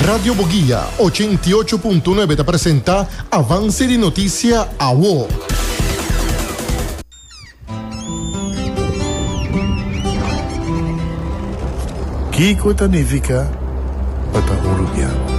Radio Boguia, ochenta i ocho punto nuebe ta presenta Avance di Noticia Awo. Kiko ta nifica pa ta urubiano?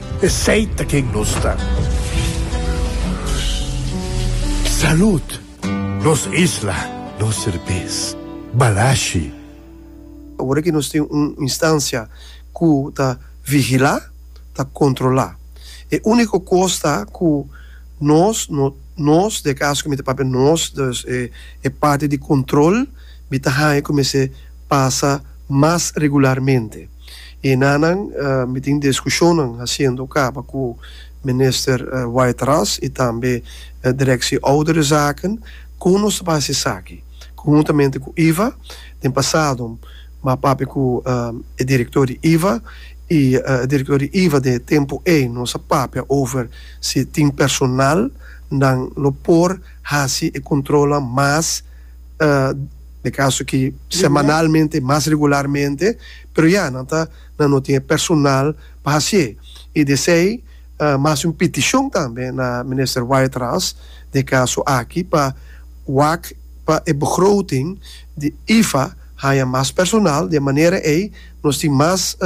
Esey ta ken nos ta. Salud! Nos isla, nos serbes. Balashi. Ora ki nos tin un instancia cu ta vigila, ta controla. E unico cos ta cu nos, nos, den e caso cu mi ta papia nos, dus e parti di control, mi ta haya cu mester pasa mas regularmente. E nanan mi tin diskushonnan hasiendo kaba ku minister White Ras i tambe direksie ouderenzaken kon nos ta por hasi esaki. Konhuntamente ku iva den pasado mi a papia ku e direktor di iva i e direktor di iva den e tempu ei nos a papia over si tin personalnan lo por hasi e kontrolnan mas. E kaso ki semanalmente i mas regularmente, pero ya nan ta nan no tin e personal pa hasié. I desei mi hasi un petishon tambe na Minister Whiteras den e kaso aki pa wak pa e begroting di IFA haña mas personal di e manera ei nos tin mas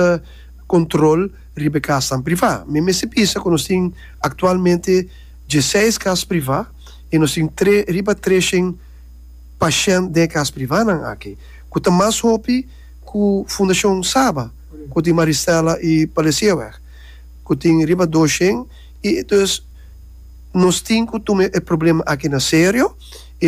kontrol riba e kasnan privá. Mi mester bisa ku nos tin aktualmente dieseis kas privá i nos tin tre riba treshent. Pashènt den e kas privánan aki, ku ta mas hopi ku Fundashon Saba ku tin Maristella i Palesieweg, ku tin riba doshen i entonces nos tin ku tuma e problema aki na serio.